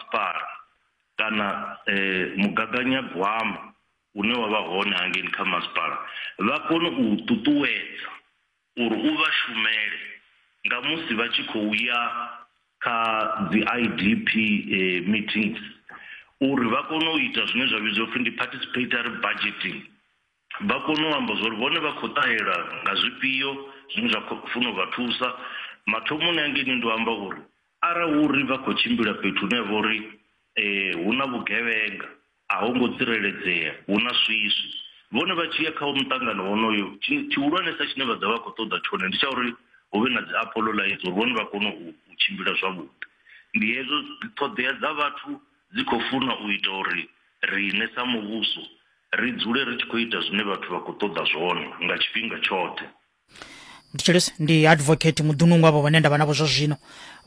Spar kana mugaganyagwama une wa vha hone hangei kha masipala vha kone u u ṱuṱuwedza uri u vha shumele nga musi vha tshi khou ya kha dzi I_D_P meetings uri vha kone u ita zwine zwa vhidziwa upfhi ndi participatory budgeting. Vha kona u amba zwauri vhone vha khou ṱahela nga zwifhio zwine zwa khou funa u vha thusa. Mathomoni a ngeini ndo amba uri arali hu uri vha khou tshimbila fhethu hune ha vha uri hu na vhugevhenga, a ho ngo tsireledzea, hu na swiswi, vhone vha tshi ya kha muṱangano wonoyo, tshi tshihulwanesa tshine vha ḓo vha vha khou ṱoḓa tshone ndi tsha uri hu vhe na dzi Apollo Lights uri vhone vha kone u tshimbila zwavhuḓi. Ndi hezwo, ṱhoḓea dza vhathu dzi khou funa u ita uri riṋe sa muvhuso Ri dzule ri tshi khou ita zwine vhathu vha khou ṱoḓa zwone nga tshifhinga tshoṱhe. Mthetshelesi ndi advocate muḓunungu avho vhane ndavha navho zwa zwino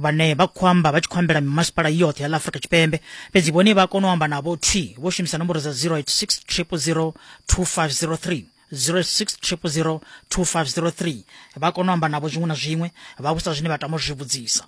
vhane vha khou amba vha tshi khou ambela mimasipala yoṱhe ya ḽa Afrika Tshipembe fhedzi vhone vha kona u amba navho thi vho shumisa nomboro dza 0860002503 0860002503 vha kona u amba navho zwiṅwe na zwiṅwe vha vhusa zwine vha tama u zwi vhudzisa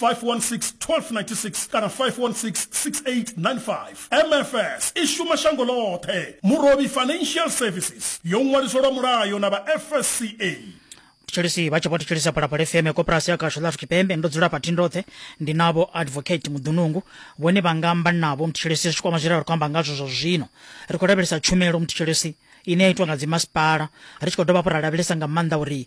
516-1296 kana 516-6895 mfs i shuma shango ḽoṱhe murobi financial services yo ṅwaliswa lwa mulayo na vha fsca tshitshilisi vha tshi vho thetshelesa phalaphala fm koporasi ya kasho ḽa afrika tshipembe ndo dzula phathini roṱhe ndi navho advocate muḓunungu vhone vha nga amba navho muthetshelesi zwi kwama zwine ra khou amba ngazwo zwa zwino ri khou lavhelesa tshumelo muthetshelesi ine ya itwa nga dzimasipala ri tshi khou dovha hafhu ra lavhelesa nga maanḓa uri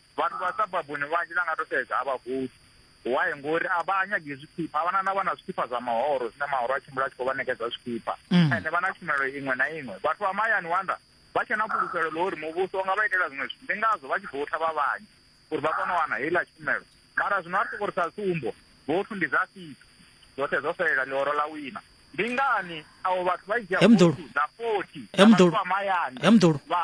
Vhathu vha sababuni vhanzhi na nga to sedza a vha gude. Why ngori a vha nyagi zwikhipha, a vhana na vha na zwikhipha zwa mahoro zwine mahoro a tshimbila a tshi khou vha ṋekedza zwikhipha. Mm. Ende vha na tshumelo iṅwe na iṅwe. Vhathu vha mahayani wanda vha tshe na fhulufhelo ḽa uri muvhuso u nga vha itela zwiṅwe zwithu. Ndi ngazwo vha tshi voutha vha vhanzhi uri vha kone u wana heiḽa tshumelo. Mara zwino a ri soko ri sa tsumbo, vouthu ndi dza fifty. Dzoṱhe dzo fhelela ḽihoro ḽa wina. Ndi ngani avho vhathu vha dzhia vouthu dza 40 dza vhathu vha mahayani. Vha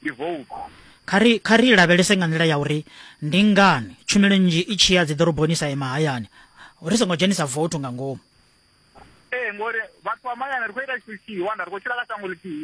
ndi vouku. Kha ri, kha ri lavhelese nga nḓila ya uri ndi ngani tshumelo nnzhi i tshi ya dziḓoroboni sa ye mahayani, ri songo dzhenisa voutu nga ngomu. Ee, ngori vhathu vha mahayani ri khou ita tshithu tshithihi, wana ri khou tshila kha shango ḽithihi.